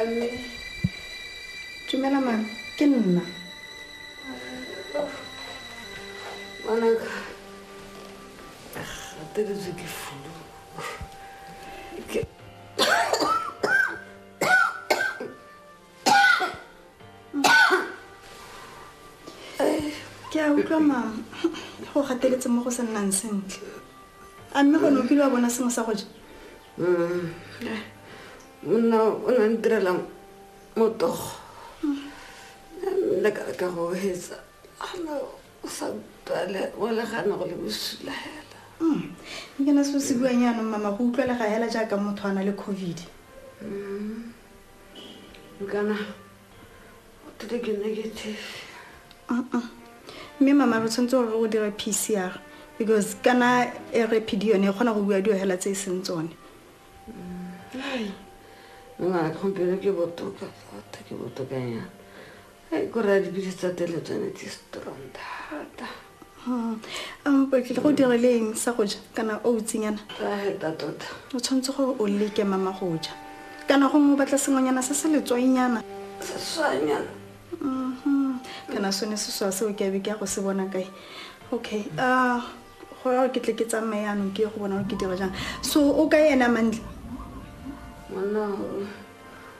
Mme, dumela mang ke nna ngwanaka gateletswe ke fulu ke a utlwa mang go gateletse mo go se nnang sentle a mme gone o kile wa bona sengwe sa go ja monna o na ntirela motogo nna ka ka go hetsa ana o sa utlwale o legana go le bosula hela mm. ke na se se buang yaanong mama go utlwale ga hela jaaka motho a na le covid mm. kana What did get negative? Uh-uh. Mme mama re tshwanetse gore o dira PCR because kana e re PD yone e kgona go bua dio hela tse e seng tsone. Hai. Ngwana ke gompieno ke botoka thata ke botoka yana. Hai ko raya dipilisi tsa tele tsone di strong thata. Hmm. Um, o tlile go dira le eng sa go ja kana o utsinyana tota o tshwanetse gore o leke mama go ja kana gongwe o batla sengwenyana se se letswainyana seswanyana mhm. kana sone seswa seo ke abe ke ya go se bona kae okay ah, go ya ke tle ke tsamaye anong ke ye go bona gore ke dira jang so o ka ena mantle monna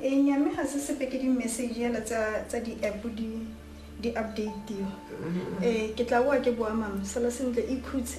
e nyame ga se sepe ke di-message yela tsa di-app di-updatiwa um eh, ke tla boa ke boa mama sala sentle e khutse